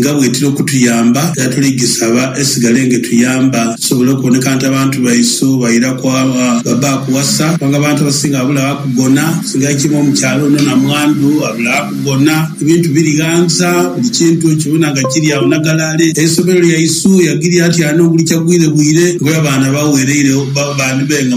nga bw'etira okutuyamba, era tuli gisaba esigale ng'etuyamba tusobole okuboneka nti abantu baisu bairaku baba akuwasa kubanga abantu abasinga babula gha kugona. Singa kiri mu kyalo ono namwandu abula gha kugona, ebintu biri ghanza, buli kintu okibona nga kiri agho nagalale. Eisomero lyaisu yagirya nti alina oguli kyagwire bwire ng'olaba abaana bawereire bandi be nga.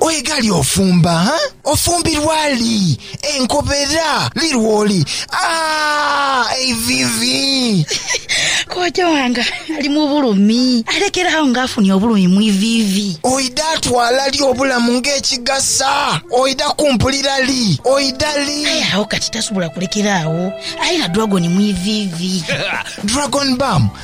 Oighali ofumba, ha? Ofumbirwa li? Enkobera li lwoli? Aah! Eiviivi! Kojja wange ali mu bulumi. Alekera agho nga afunye obulumi mu iviivi. Oidha twala li obulamu ng'ekigasa? Oidha kumpulira li? Oidha li? Aye agho kati tasobola kulekera agho. Aye na dragon mu iviivi. Dragon baamu?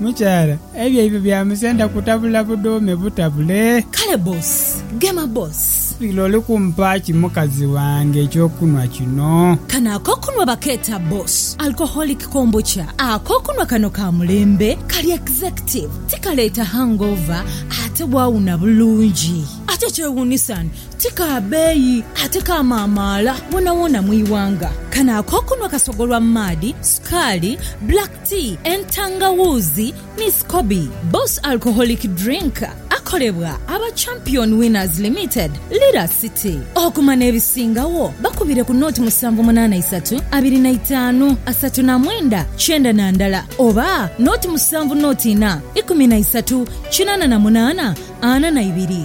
Mukyala, ebyo ebyo bya musenda kutabula budhuume butabule. Kale boss, gema boss. Lira oli kumpa ki mukazi wange ekyokunwa kino? Kano akokunwa bakeeta boss alcoholic kombucha. Akokunwa kano ka mulembe, kali executive, tikaleeta hangover ate waawuna bulungi. Ate ekyewuunisa ni ti ka beeyi ate kamaamaala woonawoona mu ighanga. Kano akokunwa kasogolwa mu maadhi, sukaali, black. Ti entangawuuzi ni scoby. Boss Alcoholic Drink akolebwa aba Champion Winners Limited, Lira City. Okuma n'ebisingagho bakubire ku naught musanvu munaana isatu abiri na itaanu asatu na mwenda kyenda na ndala oba naught musanvu naught ina ikumi na isatu kinaana na munaana ana na ibiri.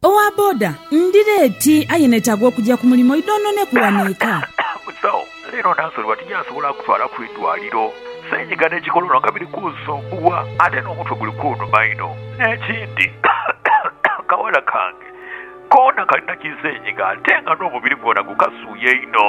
Owa boda, Ndi leeti aye neetaaga okugya ku mulimu idhonhoneku wano eka. Musawo, Leero Nansoliwa tinyasobola kutwala ku idwaliro. Senyiga n'ekikololo nga biri kunsumbuwa ate n'omutwe guli kunuma inho. N'ekindi akawala kange koona kalina kisenyiga ate nga n'omubiri gwona gukasuuya inho.